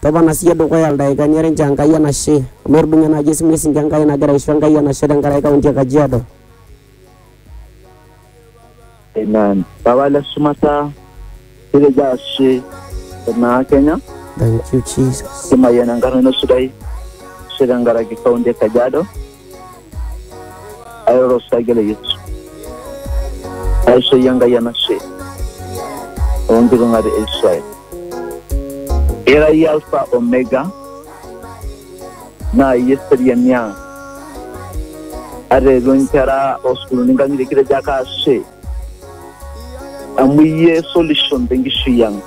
Topona siye dukuya ildaikani are nchoo Enkai enashe amu etudung'o ena aji esimiti sinche Enkai nagira aisho Enkai enashe tenkaraki kaunti e Kajiado. Amen. Papa le shumata kitejo ashe tenaa Kenya Thank you Jesus. kimayian enkarna ino sidai ashe tenkaraki kaunti e Kajiado. airoro osarge le Yesu aishooyie Enkai enashe oonkitung'ati e Israel. Ira iyie Alfa Omega naa iyie eseriani ang'. Ata eetuo inkera oosukuulini inkang'itie kitejo ake ashe amu iyie solution tenkishui ang'.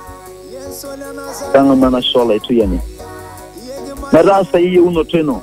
Tang'amu enashe olaituyani metaasai eyieunoto ino.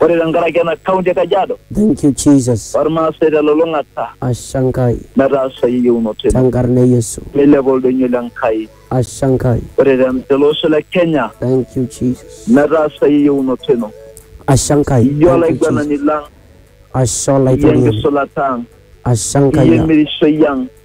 Ore tenkaraki ena kaunti e Kajiado. Thank you Jesus. Olmaasai telulung'ata. Ashe Enkai. Metaasai eyieunoto ino. Tenkarna e Yesu. Meilepa oldoinyo le Nkai. Ashe Enkai. Ore tele osho le Kenya. Thank you Jesus. Metaasai eyieunoto ino. Ashe Enkai. Iyie olaiguanani lang. Ashe olaitoriani. Iyie enkisulataa ang. Ashe Enkai. Iyie emirishoi ang.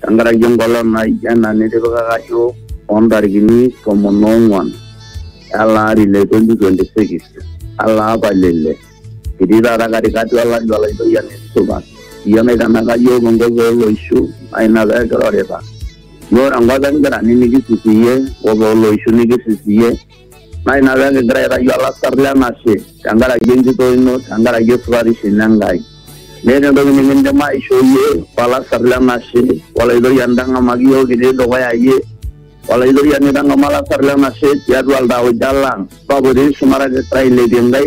tenkaraki enkolong naijo ena nitipikaka yiok oo ntarikini tomon oong'uan ele ari le 2026 ele apa le ile kitii taata katikati olari olaitoyiani supa iyie naitanaka yiok enkop ooloishu naa ina pee kirorita iyie ore enkop enkirrani nikisisiyie enkop ooloishu nikisisiyie. ngai na byange ndirayira yu alasarri anashe tenkaraki enjito ino tenkaraki esupatisho ino enkai meeta entoki nikindim aisho yie olasarri lenashe olaitoriani ntang'amaki yiok kitii dukuya yie olaitoriani tang'ama olasarri lenashe tiatua iltauja lang papa otii shumata te Israel etii enkai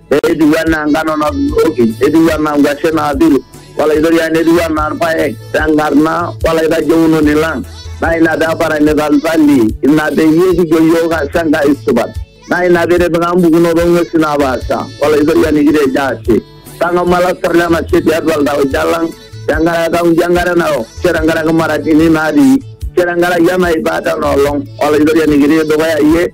etiu enaa ngano natuturoki, etiu enaa nkwashen naapil, olaitoriani etiu enaa irpaek tenkarna olaitajeunoni lang. Naa ina pee eparanita iltali, ina peyie kijo iyiook ashe Enkai supat. Naa ina pee itipika mpukunot oo ng'uesi naapaasha, olaitoriani kitejo ashe. Tang'amu olasar le nashe tiatua iltauja lang tenkaraki etaunjo enkare narok, ashu tenkaraki imaraatini natii, ashu tenkaraki enaipaata ena olong, olaitoriani kitii dukuya iyie.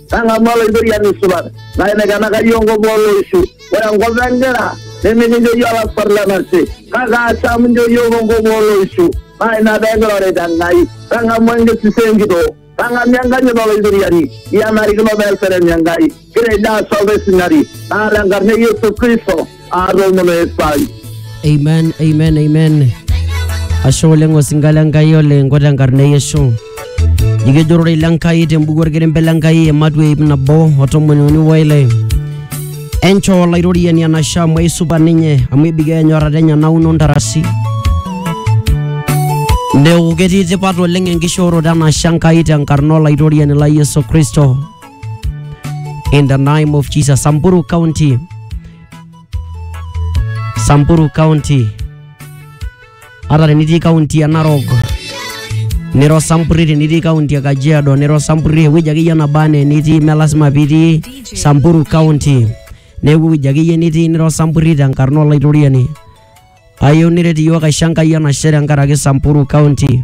nang'amu oloitoriani supat naenekena kayiong'o booloishu ore enkop enkira nimikincho iyie olasar lenashe kake asham incho iyiook enkop ooloishu naa ina pee kirorita Enkai tang'amu enkisisa enkitoo tang'amu enkanyit oloitoriani iyie enarikino pee eserem Enkai kitejo ashe olaisinani naa tenkarna e Yesu Kristo aromo na esai amen amen amen ashe oleng osinka le nkai oleng ko tenkarna e yesu nikijurore ile nkai tembuku orkerembe le nkai ematua ip nabo o tomoni uni woile enchoo olairoriani enashe amu aisupat ninye amu ebikoo enyorrata enye nauno ntarasi neeku ketii tipat oleng enkishooroto enashe enkai tenkarna olaitoriani lai yesu kristo in the name of Jesus. Samburu County. Samburu County. Hata tenitii kaunti ya Narok, niro Samburi, tenitii kaunti ya Kajiado, niro Samburi, ewueji akeyie naba enaa enitii, mme lasima pitii Samburu County. Neeku ewueji akeyie nitii niro Samburi tenkarna Olaitoriani. Ayieu niret iyiook aisho Enkai enashe tenkaraki Samburu County.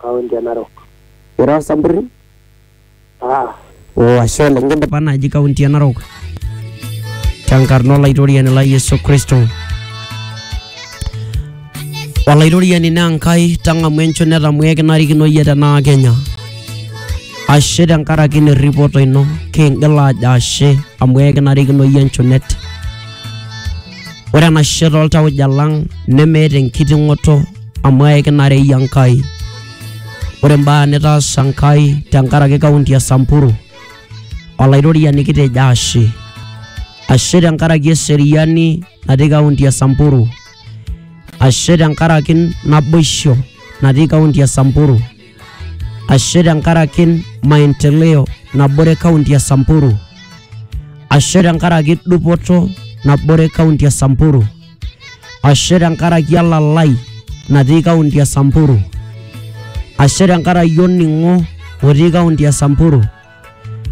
kaunti e Narok. Ira Osamburi? Ah, Oh, ashe oleng kindipa naaji kaunti e Narok. Tenkarna olaitoriani lai Yesu Kristo. Olaitoriani naa Enkai tang'amu enchon netamu ekinarikino iyie tenaa Kenya. Ashe tenkaraki ina erripoto ino kingila ajo ashe amu ekinarikino iyie enchonet. Ore enashe toltauja lang nemeeta enkiting'oto amu aikinare iyie Enkai. Ore imbaa nitaasa Enkai tenkaraki kaunti e Samburu, Olaitoriani kitejo ashe. Ashe tenkaraki eseriani natii kaunti e Samburu. Ashe tenkaraki naboisho natii kaunti e Samburu. ashe tenkaraki maendeleo nabore kaunti ya Samburu, ashe tenkaraki dupoto nabore kaunti ya Samburu, ashe tenkaraki elalai natii kaunti ya Samburu, ashe tenkaraki olning'o otii kaunti ya Samburu.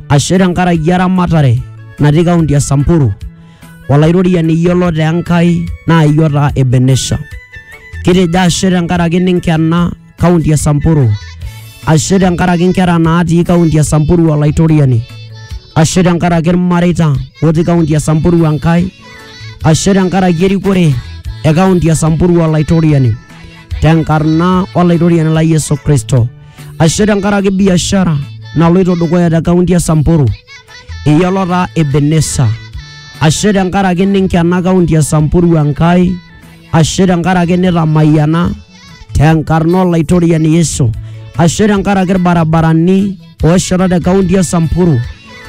ashe tenkaraki eramatare natii kaunti e Samburu olairoriani yiolot Enkai naa iyie otaa Ebenesha. Kitejo ashe tenkaraki ninkena kaunti e Samburu, ashe tenkaraki nkera naatii kaunti e Samburu olaitoriani, ashe tenkaraki ilmareita otii kaunti e Samburu Enkai, ashe tenkaraki erikore e kaunti e Samburu olaitoriani tenkarna olaitoriani lai Yesu Kristo. ashe tenkaraki biashara naloito dukuya te kaunti e Samburu eyiolo taa Ebenesa ashe tenkaraki ninkena kaunti e Samburu Enkai ashe tenkaraki nitamayiana tenkarna olaitoriani Yesu ashe tenkaraki irbarabarani oosheta te kaunti e Samburu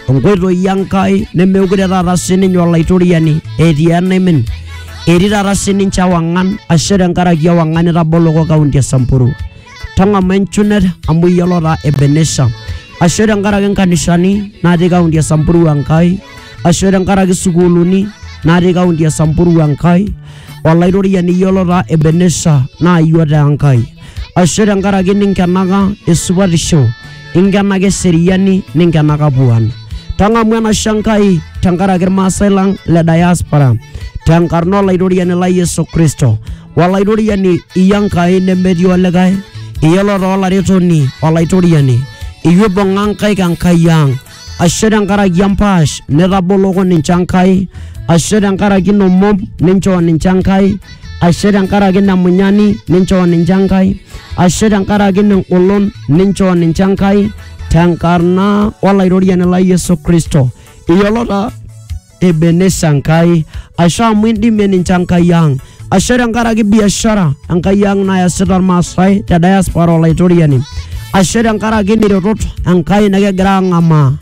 nkoitoi Enkai nemeekure taata sininye olaitoriani etii enaimin etii taata sininche ewang'an ashe tenkaraki ewang'an itaboloko kaunti e Samburu tang'ama enchunet amu iyiolo taa ebenesha ashe tenkaraki nkanisani natii kaunti e samburu enkai ashe tenkaraki sukuuluni natii kaunti e samburu enkai olaitoriani iyiolo taa ebenesha naa iyio taa enkai ashe tenkaraki ninkenaka esupatisho inkenaka eseriani ninkenaka puan tang'amu enashe enkai tenkaraki irmaasai lang le diaspora tenkarna olaitoriani lai yesu kristo Olaituriani iya Nkai nemetii olikae, iyiolo taa olaretoni Olaitoriani, iyie oibung'a nkaik Enkai ang'. Ashe tenkaraki empaash nitaboloko ninche Enkai, ashe tenkaraki ina omom ninchoo ninche Enkai, ashe tenkaraki ina munyani ninchoo ninche Enkai, ashe tenkaraki ina engolon ninchoo ninche Enkai tenkarna Olaitoriani lai Yesu Kristo. Iyiolo taa Ebenesa Nkai, ashe amu indimie ninche Enkai ang', ashe tenkaraki biashara Enkai ang' nayasita Irmaasai te diaspora Olaitoriani, ashe tenkaraki niretot Enkai nikigira ang'amaa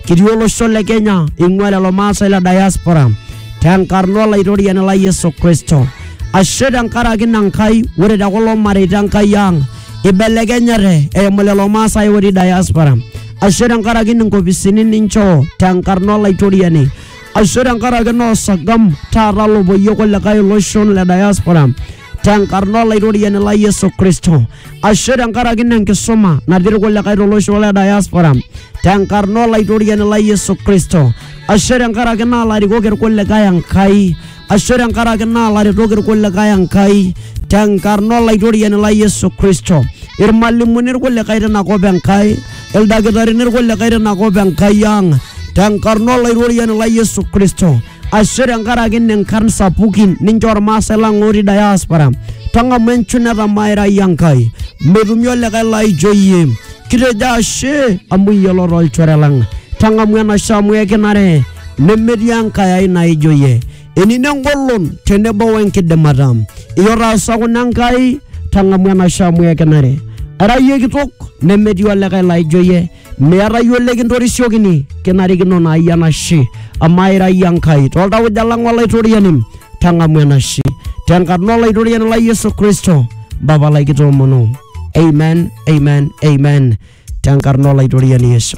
kitii olosho le Kenya ing'ua lelo Maasai le diaspora tenkarna Olaitoriani lai Yesu Kristo. Ashe tenkaraki ina Nkai, ore te kulo mareita Enkai ang' ibelekenyate eimu lelo Maasai otii diaspora. ashe tenkaraki inkopisini ninchoo tenkarna olaitoriani ashe tenkaraki noosagam taata lopoyie kulikae iloshon le diaspora tenkarna olaitoriani la Yesu Kristo ashe tenkaraki ina enkisuma natii irkulikae tolosho le diaspora tenkarna olaitoriani la Yesu Kristo ashe tenkaraki naa larikok irkulikae Enkai ashu tenkaraki naa laretok irkulikae Enkai tenkarna olaitoriani lai Yesu Kristo, irmalimuni irkulikae tina kop Enkai, ildakitarini irkulikae tina kop Enkai ang tenkarna olaitoriani lai Yesu Kristo ashu tenkaraki nenkarn sapukin ninche ormaasai lang otii diaspora tang'amu enchuneta mairai Enkai metumi olikae laijo iyie kitejo ashe amu iyiolo tolchore lang tang'amu enashe amu ekinare nemetii enkae ai naijo ye enino engolon tenebo wenkidimata iyie otaasa kuna enkai tang'amu enashe amu ekinare ara iyie kitok nemetii olikae laijo ye meeta iyie olekintorisiokini kinarikino naa iyie enashe amaa ira iyie enkai toltauja lang olaitoriani tang'amu enashe tenkarna olaitoriani lai yesu kristo mpapa lai kitoomono amen amen amen tenkarna olaitoriani yesu